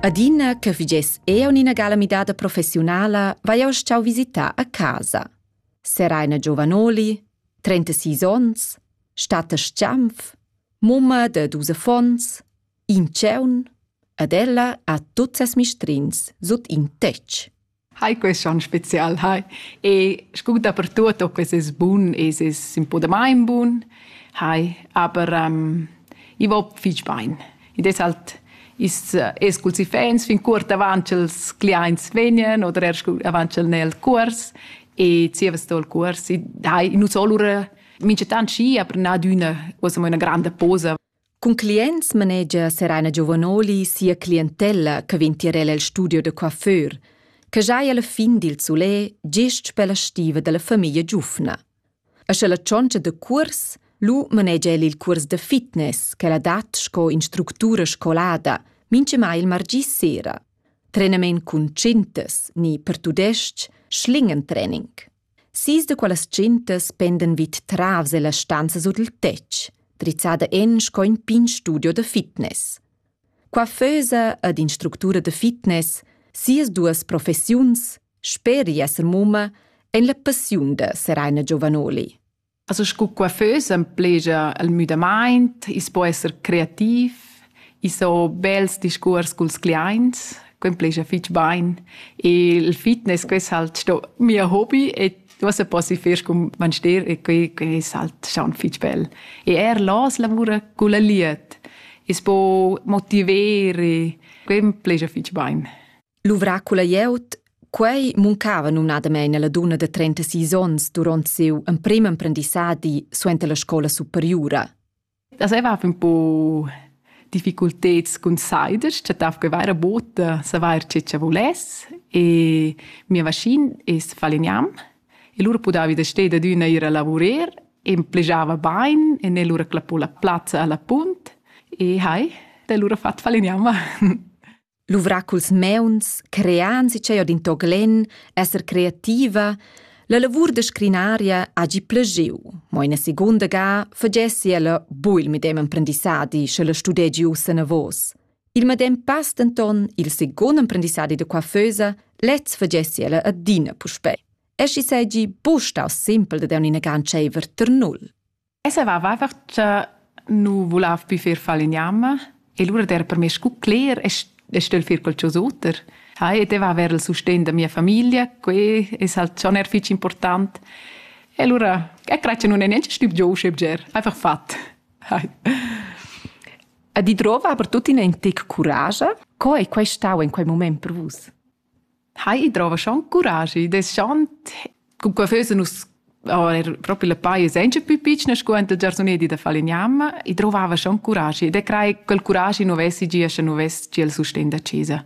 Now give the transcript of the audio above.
Adina che vigess eu ina gala midada professiunala, vai eu stau visitar a casa. Seraina Giovanoli, 36 ons, Statta Schianf, mumma de dus affons, in tscheun, ad ella ha tuts ses mistrins sut in tetg. Hai quest onn spezial, hai. E scu dapertuot ho quest es bun, es es ün po damain bun, hai. Aber ähm, i va fich bain. Id es halt i's es culs iffaints fin cuort avant ch'els cliaints vegnan oder er scu avant ch'el n'è il cuors e zievas sto il cuors. I hai, nu so lura minchatant schi, aber nadüna uossa mo üna granda posa Cun clients manegia Serena Giovanoli sia clientella che vegn tier el el studio da coiffeur, che giai alla fin dil sulè gest per la stiva dalla famiglia giufna. E sche la tschontscha da cuors, lu manegia el il cuors da fitness che la dat sco instructura scolada, mintgemai il margì sera. Trenament cun tschintas ni per tudestg schlingen-training. Sis da quellas gentas pendan vid travs ella stanza sut il tetg, drizzada en sco in pign studio da fitness. Qua fösa ad in structura da fitness sias duas professiuns, speri esser mumma, en la passiun da Seraina Giovanoli. Also sco coiffeus emplegia el müdamaint, i's po esser creativ, i's ho bels discuors culs cliaints, que emplegia fich bain. E il fitness, que es halt sto mia hobi e uossa posi fer cun manster e que, que es halt staun fich bel. E eir l'hoz lavura culla lied. I's po motiver e que emplegia fich bain. Luvrà culla glieud Quei muncava numnadamein alla dunna de 36 onns duront siu emprim emprendissadi suenter la scola superiura. Das era un po difficulteds cun siders, chattav che vaira bota savar ce che voless e mia vaschin es faliniam e lura pudavi da steda d'una ir a lavurer e plegiava bain e ne lura clappò la plazza alla punt e hai, da lura fat faliniam. Luvrar culs meuns, crean si ch'ei odin toglen, esser creativa, la lavur da scrinaria hagi plagiu, mo ina secunda ga fagessi ella buil medem emprendissadi sche la studegi ussa anavos. Il medem pass denton il secund emprendissadi da coiffeusa lez fagessi ella adina puspei. E schi seigi buc stau simpel da dar ina ganscheiver ter null. E saveva einfach cha nu vulav pü fer fal in jamma e lura d'er per me scu cler e stögl fer qualchosa oter. Hai, ed va vers il sustegn da mia famiglia, quai es halt schon er fich important. E lura, e craj cha nun è neanche stüb giò uschè bger, einfach fat. Hai. E di drova aber tuttina in tic curage. Co è quai stau in quei moment per vus? Hai, i drova schon curaschi deschant cun quei füssen nus er propi le paie senza più piccina scuanta giarsunedi da Falignam, i drovava schon curaschi ed e crei quel curaschi nu vessi gia sche nu vess gia il sustegn da chesa.